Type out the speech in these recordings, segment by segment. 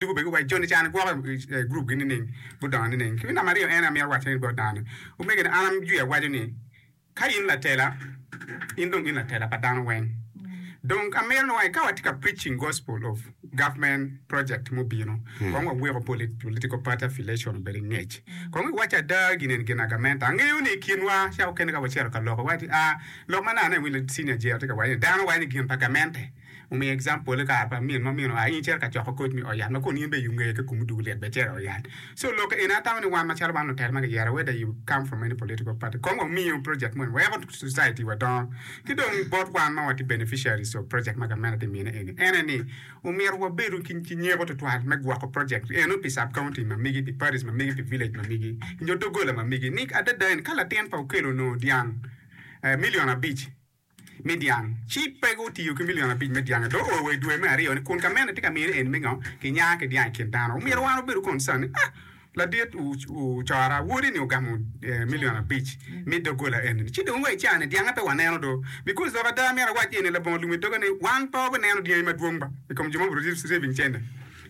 Tugo bene wa Joni cani gwoke i gurup gi nining gudongo nining ki me namba aryo en amito waco ni bot dano ni omege na an amjwi awaco ni ka in latela in dong in latela pa dano weng dong amito ni wai ka watye ka preaching gospel of government project mubino kong wa weko political party affiliation obedo ngec kong i waco ada gin en gina gamenta angeyo ni i kin wa ca okene ka wacito ka loko wati a lok ma nane wile senior jr tye ka waco ni dano waco ni gin pa gamente Omiyo example kare pa min mo mino a in cito ka coko koc me ot yat ma kun in bene you ngeye ki kumu dul lit bene cito ot yat so loke eni atamo ni wan macalo wan lutel ma giyero whether you come from any political party kong wa miyo project moni weko society wa dongo ki dong bot wan ma watye beneficiaries of project ma gamente tye mine eni ene ni omyero wabedo ki nyeko tutwal me gwoko project eno pi sub county ma migi pi parish ma migi pi village ma migi nyo dogola ma migi ni adada eni ka latin pa okello onongo dyang million abic me dyang, ci pe gutiyo ki milion abic me dyange dong oo wa i dwe me aryo-ni, kun ka meno tye ka mino en mingo kinya ki dyang i kin dano. Omyero wan wabedo concerned ni, 'Ah, ladit cora, wodi-ni ogamo milion abic me doggola eni-ni, ci dong wa i caa-ni dyange pe waneno do! Because dok ada myero awac iye ni, labongo lum i doga ni, wan pe wabineno dyangi madwong ba i kom jo ma obiro receiving cene.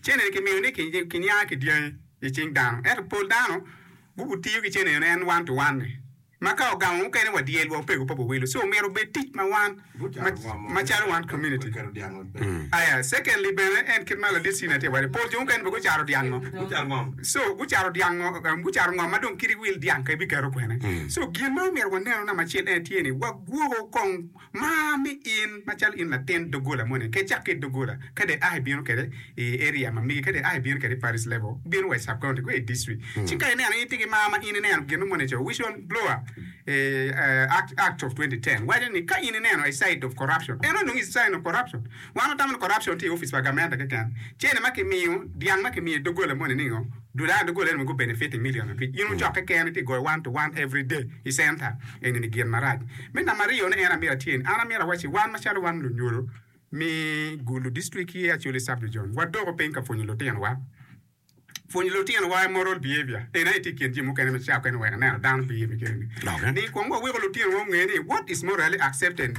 Cene-ni kimiyo ni kinya ki dyangi i cing dano, ento pol dano gutiyo ki cene-ni en one to one-ni. ma ka ogamo mukene wa dyelwa opego pa wawelo so myero obed tic ma wan macalo wan community aya secondly bene en kit ma ladit Cina tye wade pol jo mukene bene gucaro dyang ngo so gucaro dyang ngo gucaro ngo ma dong kit wil dyang ka ibiketo kwene so gin ma myero wanenu namba acel en tye ni wagwoko kong Mar ni in macalo in latin doggola moni ke cak ki doggola ka dong aa ibino kwede i area ma mege ka dong aa ibino kwede i parish level bino wa i sub county go i district ci ka ineno itye ki mar ma in ineno gin moni co wishon blower act of 2010 waco ni ka in ineno a sign of corruption eno onongo is sign of corruption wan watamo ni corruption tye i office pa gamente keken cene ma kimiyo dyang ma kimiyo i doggola moni ni ngo Dola doggola eni mogo benefit i million abic in wucokke keken itye goyo one to one every day i center eni ni gin marac me namba aryo ne en amyero atye ni an amyero awaci wan macalo wan lunyodo mi gulu district ki Acholi sub region wadoko piny ka pwonyo lutino wa pwonyo lutino wa moral behavior eni aye tye i kin jami mukene ma ca okene wek aneno dano biye me kene ni ni kong wawiko lutino wa onge ni what is morally accepted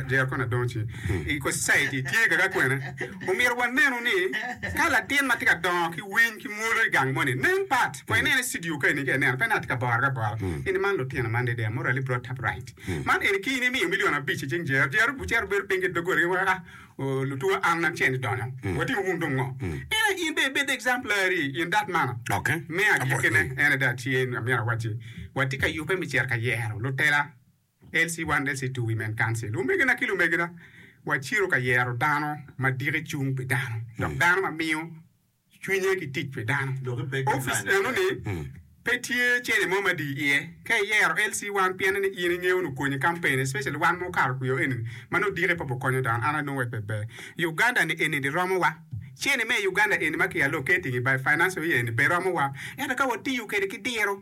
Jercon Adonci i society tye kaka kwene Omyero wanenu ni ka latin ma tye ka dongo ki winy ki mwolo i gang moni nen pat kong inene i cidio ka eni ka ineno pe ni atye ka borre abora eni man lutino man dedeya murali bro tap right man eni ki in imiyo milion abic i cing jero jero bucero bedo piny ki dogola gi weko ka lutuwa an an ceni donyo watimo wun dong ngo ena in bene ibed examplary in that manner me agikine ene dong atye amyero awacci watye ka yube me cito ka yero lutela. Elsie Wandessi to Women Council, Omegina ki lumegina, wacito ka yero dano ma diki cung pi dano dok dano ma miyo cwinye ki tic pi dano. Opic enoni pe tye cene mo ma dii iye. Ka iyero Elsie wan pienni ni in ingeyo nu konyi campaign especially wan ma okato kwiyo eni ma nongo diki pe bu konyo dano an anongo wek pe ber Uganda ni eni di romo wa. Cene me Uganda eni ma ki allocating by financial year eni be romo wa ento ka watiyo kede ki diro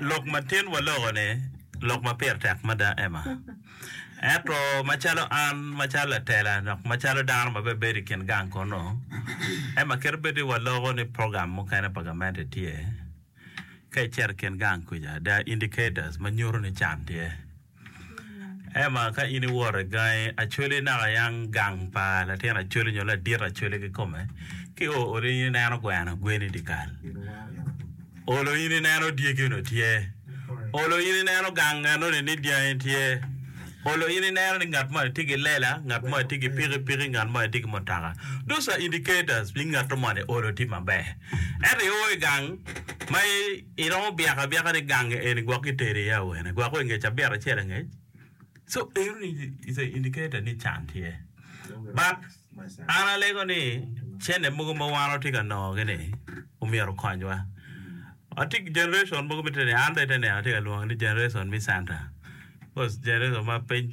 Lok matin waloko-ni lok ma pire tek mada, Emma. Ento macalo an, macalo latela, dok macalo dano ma bebedo i kin gang kunu, Emma, kit bedo ni waloko ni program mukene pa gamente tye ka icito i kin gang kuca, there are indicators ma nyuto ni can tye. Ema ka in iwot i gangi Acholi naka yang gang pa latin Acholi nyo ladit Acholi kikome, ki o olo in ineno gweno gweni dyekal, olo in ineno dyegi onongo tye, olo in ineno gang enoni ni dyangi tye, olo in ineno ni ngat mo ni tye ki lela, ngat mo ni tye ki pikipiki, ngat mo ni tye ki mutoka. Those are indicators ni ngat moni olo tye maber. Ento i o i gang ma Iromo byeko abyeka ni ganga eni gwok kiteri iye awene, gwok wa ingec abiro acel angec. So eno ni is a indicator ni can tye. But an alego ni cene mogo ma wan watye ka nongo gi ni omyero okony wa. Watye ki generation mogo ma tye ka neno, an bene tye ka neno atye ka lwongo ni generation me center. Coz generation ma piny